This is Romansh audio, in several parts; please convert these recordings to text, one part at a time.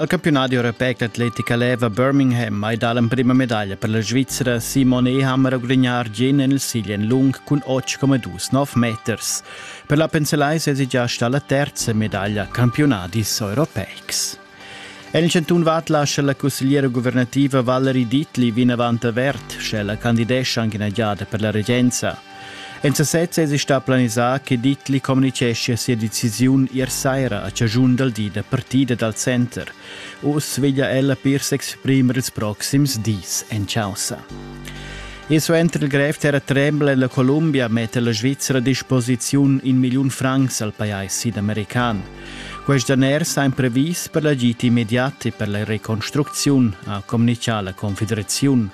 Il campiunadi europeic d'atletica leva Birmingham mai dar l'emprima medaglia per la Svizra Simon Ehammer gudignar Argien en il siglien lung cun 8,29 meters. Per la Penselai sesi già sta la terza medaglia campiunadis europeics. En il cantun Vad lascia la cussegliera guvernativa Valerie Dittli vinavant avert, sche la candidescia anche ina giada per la regenza. En sasez esi stà planisà che Dittli communitgeschia sia decisiun ier saira a chaschun dal di da partida dal center. Uss veglia ella pir s'exprimer ils proxims dis en chaussa. E suenter il grev terra trembla la Columbia metta la Svizzera a disposiziun in milliun francs al pajais sidamerican. Quest daner sa imprevis per l'agit immediat e per la reconstrucziun, ha communicà la Confederaziun.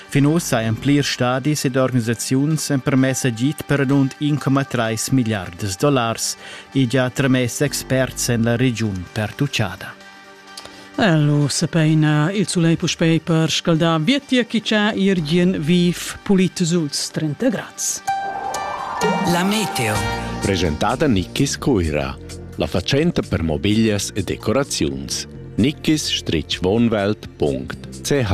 Fin ussa ein plirs stadis ed organisaziuns empermess agid per radund 1,3 milliardas dollars e gia tramess experts en la regiun pertuchada. Lu sepeina il sulei puspei per scaldar vietia chi cha irgien viv pulit suls 30 grads. La meteo. Presentata Nikkis Cuira, la facenta per mobiglias e decoraziuns. nikkis-wohnwelt.ch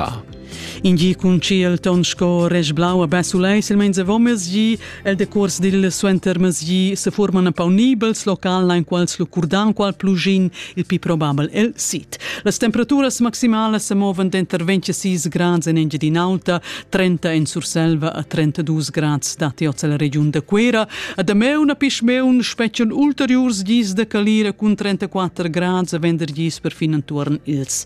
In gi cun tschiel ton sco resch blau a basulai silmeins avon mesgi el decurs dil suentermesgi se forman apaunibels local ein quals lu curdan qual plugin il pi probabel el sit. Las temperaturas maximalas se movan denter 26 grads en Engiadin'Alta, 30 en Surselva a 32 grads dati oz la regiun da Cuera. A Dameu na pischmeun spetgan ulteriurs gis da calira cun 34 grads a vendergis per fin entuorn ils